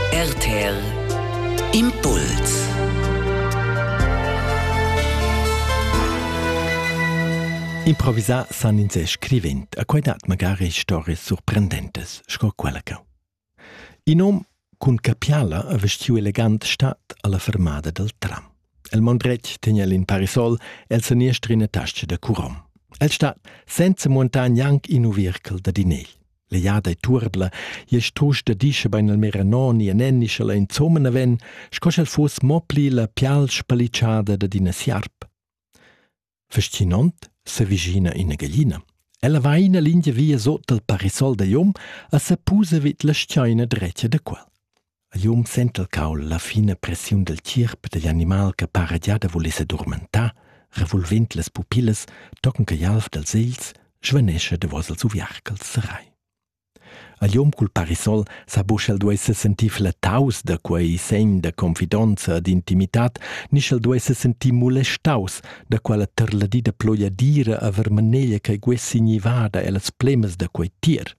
RTL Impuls Improvisà san ins è scrivent, a quai dat magari stories surprendentes, sco quella che. In om cun capiala a vestiu elegant stat alla fermada dal tram. El mon dretg tegna el in parisol el seniestr in tasce da curom. El stat senza montar gnanc in uviercel da dinel. L'egliada è turbla, ies tusch da discha bain al meranon e nenni scha la insomma na ven, sco sch'el fuss mo pli la pial spalitschada dad ina siarp. Fascinant s'avvicina ina gaglina. Ella va ina lingia via sot dal parisol da Jom e sa pusa vid la schaina drecia da quel. A liung sentelcaul la fina pressiun dal tgierp digl animal che para gia da voler sedurmentar, revolvend las pupillas tochen che gl'alv dals egls svanescha davos els uviarcals serai. A liung cul parisol sa buc el duei sentir flattaus da quei segn da confidonza e d'intimitad, ni sch'el duei sentir molestaus da quella terladida ploiadira a vermaneglia che guessi nivada ellas plemas da quei tier.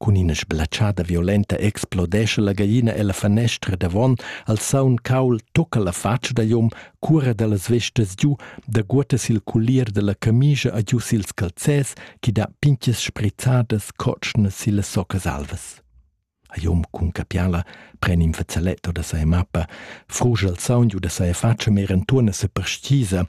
Cun ina sblatschada violenta explodescha la gagina ella fanestra davon, al saun caul tucca la fatscha da Jon, cuora dallas vestas giu, daguotta sil culier dalla camischa a giu sils calzers, che dat pintgas sprizzadas cotschnas silla socca salvas. A Jon cun capiala pren in fazzaletto da sa mappa, frugia il saun giu da sa fatscha mer entuorna seperstgisa